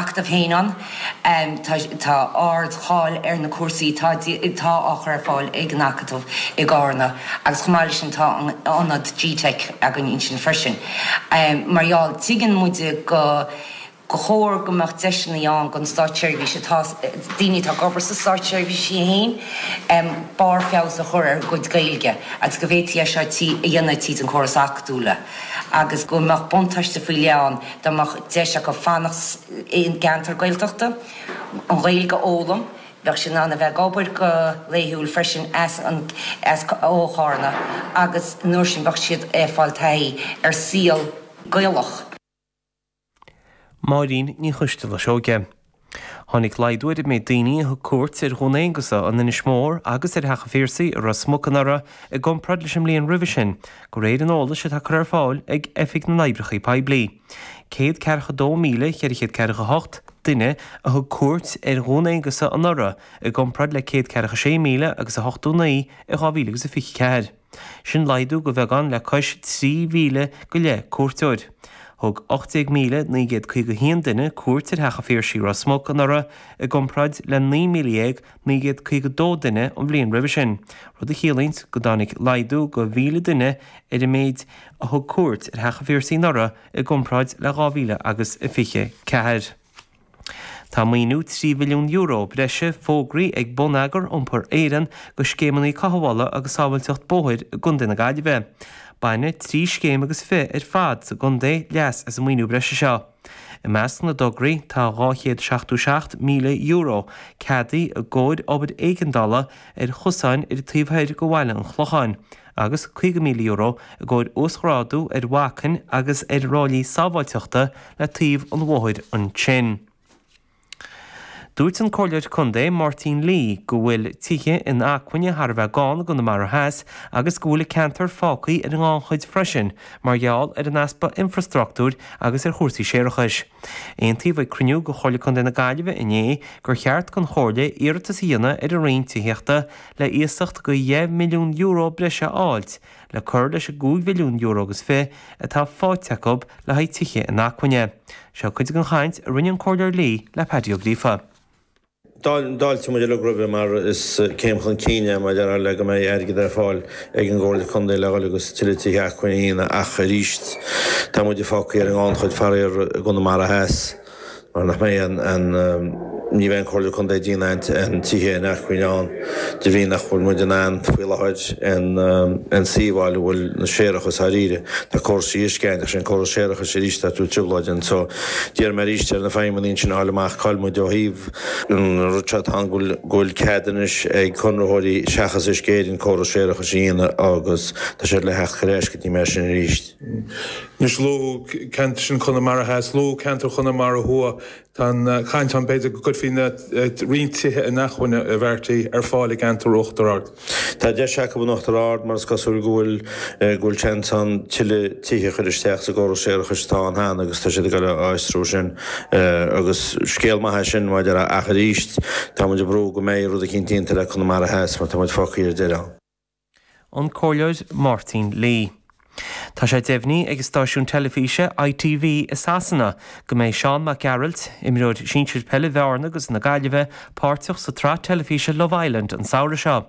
acadamh héin ann. Tá ardcháil ar na cúrsaí atá á chur ar fáil ag an Acadamh i gCárna agus chomh maith leis sin tá an t-ionad gteic againn ansin freisin. Mar gheall, tuigeann muid gur chóir go mbeadh deiseanna ann don stáitseirbhís atá, daoine atá ag obair sa stáitseirbhís iad féin, barr feabhas a chur ar a gcuid Gaeilge agus go bhféadfaí é seo a dhéanamh tríd an gcóras acadúla agus go mbeadh buntáiste faoi leith ann dá mbeadh deis acu fanacht i gceantar Gaeltachta, an Ghaeilge a fhoghlaim, bheadh siad in ann a bheith ag obair go laethúil freisin ó Chárna agus an uair sin bheadh siad ag fáil taithí ar an saol Gaelach. Máirín Ní Choisdealbha Seoige. Tháinig laghdú ar an méid daoine a thug cuairt ar Dhún Aonghasa in Inis Mór agus ar Theach an Phiarsaigh i Ros Muc anuraidh i gcomparáid leis an mbliain roimhe sin, de réir an eolais atá curtha ar fáil ag Oifig na nOibreacha Poiblí. Céad ceathracha a dó míle ceithre chéad ceathracha a hocht duine a thug cuairt ar Dhún Aonghasa anuraidh i gcomparáid le céad ceathracha a sé míle agus a hochtó naoi in dhá mhíle agus a fiche ceathair. Sin laghdú go bheagán le cois 3,000 go leith cuairteoir. Thug 18,951 duine cuairt ar Theach an Phiarsaigh i Ros Muc anuraidh i gcomparáid le 19,952 duine an bhliain roimhe sin, rud a chiallaíonns go dtáinig laghdú go 1,000 duine ar an méid a thug cuairt ar Theach an Phiarsaigh anuraidh i gcomparáid le 2024. Tá maoiniú €3 mhilliún breise fógraithe ag Bonneagar Iompair Éireann go scéimeanna cothabhála agus sábháilteacht bóthair i gContae na Gaillimhe. Bainfidh trí scéim agus fiche ar fad sa gcontae leas as an maoiniú breise seo. I measc na dtograí tá €277,000 ceadaithe i gcomhair obair éigeandála ar chosáin ar an taobh thoir go Bhaile an Chlocháin, agus €50,000 i gcomhair uasghrádú ar bhacainn agus ar ráillí sábháilteachta le taobh an bhóthair ansin. Dúirt an Comhairleoir Contae Máirtín Lee go bhfuil tithe inacmhainne thar a bheith gann i gConamara Theas agus go bhfuil an ceantar fágtha ar an ngannchuid freisin mar gheall ar an easpa infrastruchtúir agus ar chórais séarachais. Aontaíodh ag cruinniú de Chomhairle Contae na Gaillimhe inné gur cheart don Chomhairle iarratas a dhéanamh ar an Roinn Tithíochta le iasacht go €10 milliún breise a fháilt le cur leis an €5 mhilliún agus fiche atá faighte acu le haghaidh tithe inacmhainne. Seo cuid den chaint a rinne an Comhairleoir Lee le Paddy Ó Gríofa. D'fháiltigh muid uilig roimhe mar is céim chun cinn é maidir le go mbeidh airgead ar fáil ag an gComhairle Contae le dhul agus tuilleadh tithe inacmhainne ach arís tá muide fágtha ar an ngannchuid, faraor, i gConamara Theas. Mar nach mbeidh an, ní bheidh an Comhairle Contae ag déanamh aon tithe inacmhainne ann de bhrí nach bhfuil muid in ann faoi láthair aon suíomh a fháil a bhfuil an séarachas dháiríre. Tá córas de dheisceabaint, ach sin córas séarachais arís atá ag tabhairt trioblóid ann. So d'iarr mé arís ar na feidhmeannaigh ansin a fháil amach cá'il muid ó thaobh an rud seo atá ann go bhfuil cead anois ag conraitheoirí seachas Uisce Éireann córas séarachais a dhéanamh agus tá siad le theacht ar ais go dtí mé sin arís. Anois luadh ceantar ansin Chonamara Theas, luadh ceantar Chonamara Thuaidh. Tá an chaint ann b'fhéidir go gcuirfí roinnt tithe inacmhainne a bheartaí ar fáil i gceantar Uachtar Ard. Tá deis acu in Uachtar Ard mar is cosúil go bhfuil seans ann tuilleadh tithe a chur isteach sa gcóras séarachais atá ann cheana agus tá siad ag iarraidh a fhiosrú sin agus scéal maith é sin maidir le ach arís tá muid ag brú go mbeidh rud eicínt déanta le Conamara Theas mar tá muid fágthaí ar deireadh. an Comhairleoir Máirtín Lee. Tá sé deimhnithe ag an stáisiún teilifíse ITV i Sasana go mbeidh Seán Mac Gearailt, imreoir sinsir peile Bhearna agus na Gaillimhe, páirteach sa tsraith teilifíse Love Island an samhradh seo.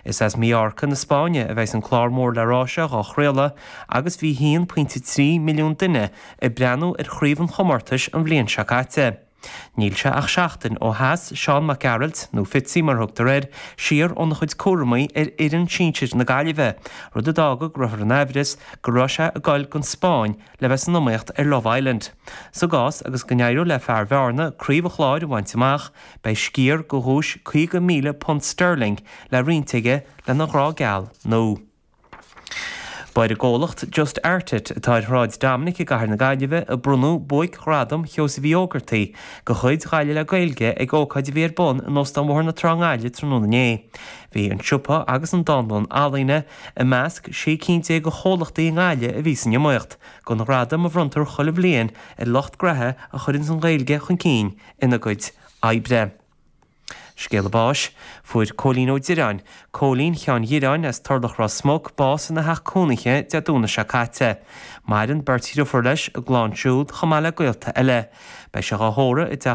Is as Mallorca na Spáinne a bheidhs an clár mór le rá seo dhá chraoladh agus bhí 1.3 milliún duine ag breathnú ar chraobh an chomórtais an bhliain seo caite. Níl sé ach seachtain ó sheas Seán Mac Gearailt, nó Fitzy mar a thugtar air, siar óna chuid cúramaí ar fhoireann sinsir na Gaillimhe, rud a d'fhág go rabhthar in aimhreas go raibh sé ag goil gon Spáinn le bheith san iomaíocht ar Love Island. Sa gcás agus go n-éireodh le fear Bhearna craobh an chláir a bhaint amach, beidh sciar de dhuais £50,000 sterling le roinnt aige lena ghrá geal nua. Ba ar an gcomhlacht Just Art It, atá ar Shráid Dominic i gcathair na Gaillimhe, a bronnadh Buaic-Ghradam Sheosaimh Uí Ógartaigh de chuid Ghaillimh le Gaeilge ag ócáid a bhí ar bun in Óstán Bhóthar na Trá i nGaillimh tráthnóna inné. Bhí an siopa agus an dánlann ealaíne i measc sé cinn déag de chomhlachtaí i nGaillimh a bhí san iomaíocht don ghradam a bhronntar chuile bhliain ar lucht graithe a chuireanns an Ghaeilge chun cinn ina gcuid oibre. Scéala báis. Fuair Cóilín Ó Direáin, Cóilín Sheáin Dhireáin as Turlach Ros Muc, bás ina theach cónaithe Dé Domhnaigh seo caite. Maireann beirt dhriofúr leis, a gclann siúd, chomh maith le gaolta eile. Beidh sé dhá thórramh i dteach